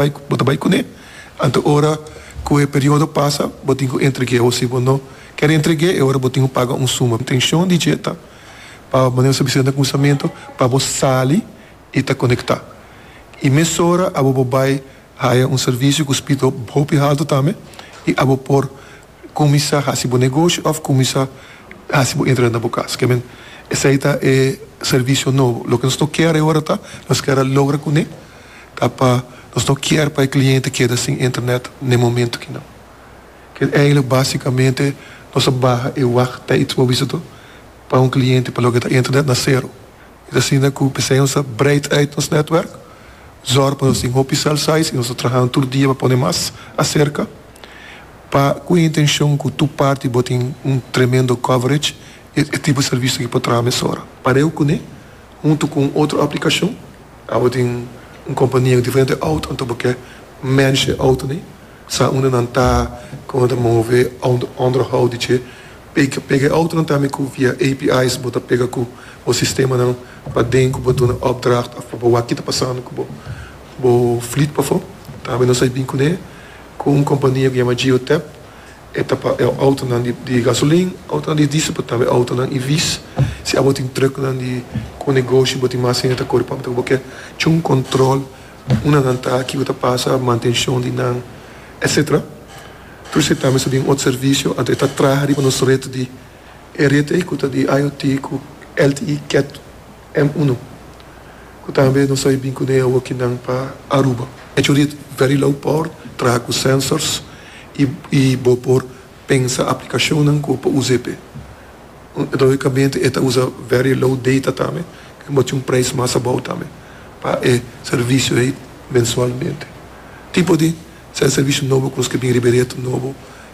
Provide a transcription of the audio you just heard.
Bai bo ta bai kuné, anto ora ku e periodo pasa bo tin ku entreg'é o si bo no kèr entreg'é e ora bo tin ku paga un suma. Intenshon di dje ta pa manera nos a bisa na kuminsamentu pa bo sali i ta konektá. I mesora abo bo bai haya un servisio ku spito hopi haltu tambe i abo por. Kuminsá hasi bo negoshi òf kuminsá hasi bo entrada na bo kas. Ke men, esei ta e servisio nobo. Loke nos no kier e ora ta, nos kier a logra kuné ta pa nos no kier pa e kliente keda sin internet n'e momentu kinan. Ke eindelijk básikamente nos a baha e wachttijds bo bisa to pa un kliente pa loke ta internet na sero. Es asina ku p'esei nos a breid uit nos netwerk, zòrg pa nos tin hopi cel size i nos ta trahanan tur dia pa pone mas aserka. Pa cu e intencion cu tur parti bo tin un tremendo coverage e tipo servicio aki por traha mesora. Pareu cune, hunto cu un otro aplicacion, abo tin un compania cu diferente auto anto bo ke manage e auto ne, sa unda nan ta, como nan ta move, onderhoud di dje, pega pega e autonan tambe cu via API's bo ta pega cu bo sistemanan paden cu bo duna opdracht of bo wak kita pasando cu bo bo fleet pafo, tambe nos a bin cune. Ku un kompania ku yama Geotep, e ta pa e outonan di gasolin, outonan di diesel pero tambe outonan EV's. Si abo tin trùknan di ku negoshi bo tin mas hende ta kore pampe ta ku bo ke cu un kòntròl unda nan ta, kiko ta pasa, mantenshon di nan, etsetera. Tur esei tambe ta bin otro servisio. Anto e ta traha riba nos ret di e ret ei ku ta di IOT ku LTE, ket. M unu ku tambe nos a bin kuné awo ki nan pa Aruba. E churi very low port traha ku sensors i bo por pensa aplikashonnan ku por usa p'e. Logikamente e ta usa very low data tambe ku e mostra un preis mas abou tambe pa e servisio ei mensualmente. Tipo di sèn servisio nobo ku nos ke bin riba e reto nobo.